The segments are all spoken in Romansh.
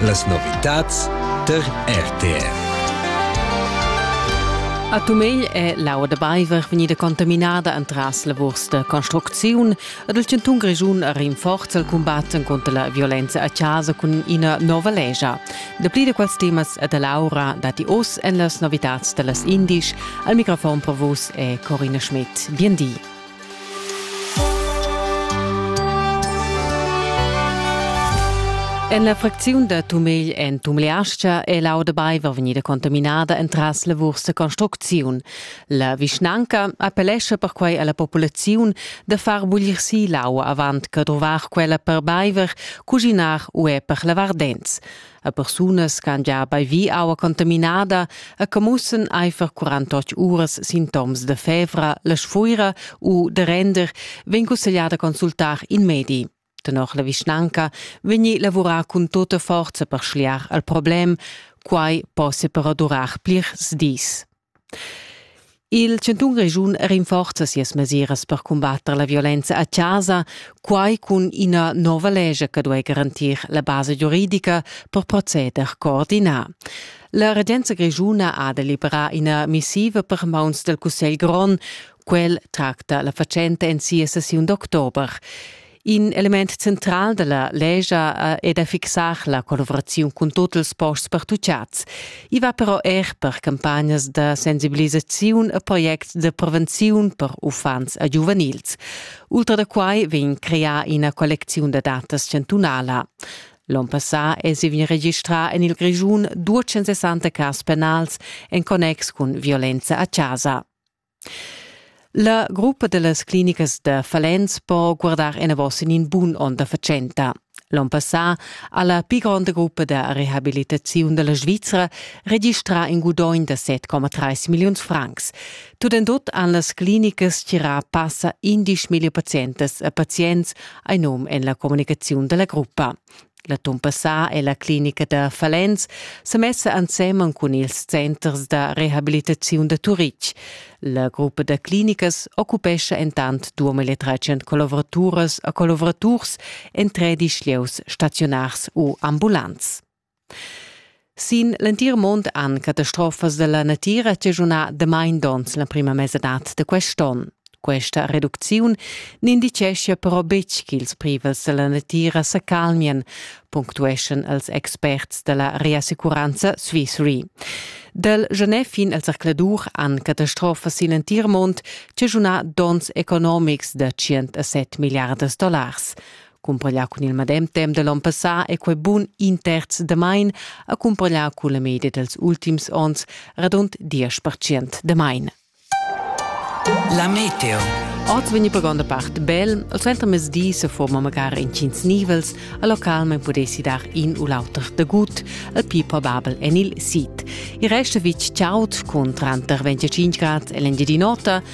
Las novitads tar RTR. A Tumegl è l'aua da baiver vegnida contaminada entras la vurs da construcziun ed il chantun Grischun ha rinforza il cumbat contra la violenza a casa cun ina nova lescha. Dapli da quels temas e da Laura datti oz en las novitads da las Indisch. Al microfon per vus è Corina Schmidt. Bien di. En la fracziun da Tumegl en Tumleastga è l'auda baiver vegnida contaminada entras lavurs da construcziun. La vischnanca appellescha perquai alla populaziun da far buglir si l'aua avant che drovar quella per baiver, cuginar u er per lavar dents. a persunas ch'han gia baivi aua contaminada e che mussen aifer 48 uras sintoms da fevra, la sfuira u da render, vegn cussegliada consultar in medi. Tenor la vischnanca vegni lavurà cun tota forza per schliar al problem, quai possa però durar plirs dis. Il chantun Grischun rinforza sias mesiras per cumbatter la violenza a chasa, quai cun ina nova lescha che duai garantir la basa giuridica per proceder coordinà. La regenza grischuna ha deliberà ina missiva per mauns dal Cussegl grond. Quel tracta la fatschenta en sia sessiun d'october. In element central dalla legia è da fixar la collaboraziun cun tut ils posts pertucciats. I va però er per campagnas da sensibilisaziun a projects de prevenziun per uffants e giuvenils. Ultra da quai vegn creà ina collecziun da datas chantunala. L'on passà èsi vegni registrà en il Grischun 260 cas penals en connex cun violenza a chasa. La gruppa da las clinicas da Falens po guardar enavos en in bun onn da fatschenta. L'onn passà ha la pli gronda gruppa da rehabilitaziun da la Svizra registrà in gudogn da 7,3 milliuns francs. Tut en tut han las clinicas tgirà passa 11 million pazientas e pazients ein num en la communicaziun da la gruppa. L'atun passà è la clinica da Falens sa messa ensemen cun ils centers da rehabilitaziun da Turitg. La gruppa da clinicas occupescha entant 2300 collavoraturas e collaboraturs en tredici lieus staziunars u ambulants. Sin l'entir mund han catastrofas dalla natira chaschunà damain donns l'emprima mesadad da quest onn. Questa reducziun n'indiceschia però betg ch'ils privels da la natira sa calmian, punctueschan els experts da la Reassicuranza Swissre. Dal genè fin al zercladur han catastrofas sin l'entir mund chaschunà donns economics da 100 a 7 milliardas dollars. Cumpaglià cun il medem temp da l'onn passà è quai bun in terz damain a cumpagliar cun la media dals ultims onns, radund diesch percent damain. La meteo. Oz vegni per gronda part bel, il suentermezdi se forma magari intgins nivels, a localment pudessi dar in u l'auter dagut, il più probabel en il sid. Il resto vitg chaud con tranter 25 grad e l'engiadinota,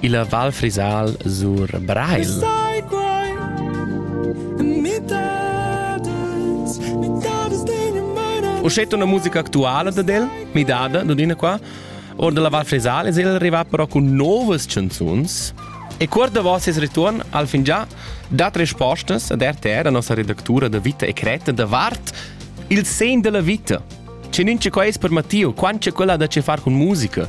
illa Val Frisal sur Breil. Uschet una musica actuala dad el, midada, Dodina qua. Or della Val Frisal es el rivà però cun novas chanzuns e cuort davo ses return al fin già dat respostas ad RTR, a nossa redactura da Vita e Creta, davart il sen della vita. C'è nince quais per Matteo, quant c'è quella da ce far con musica,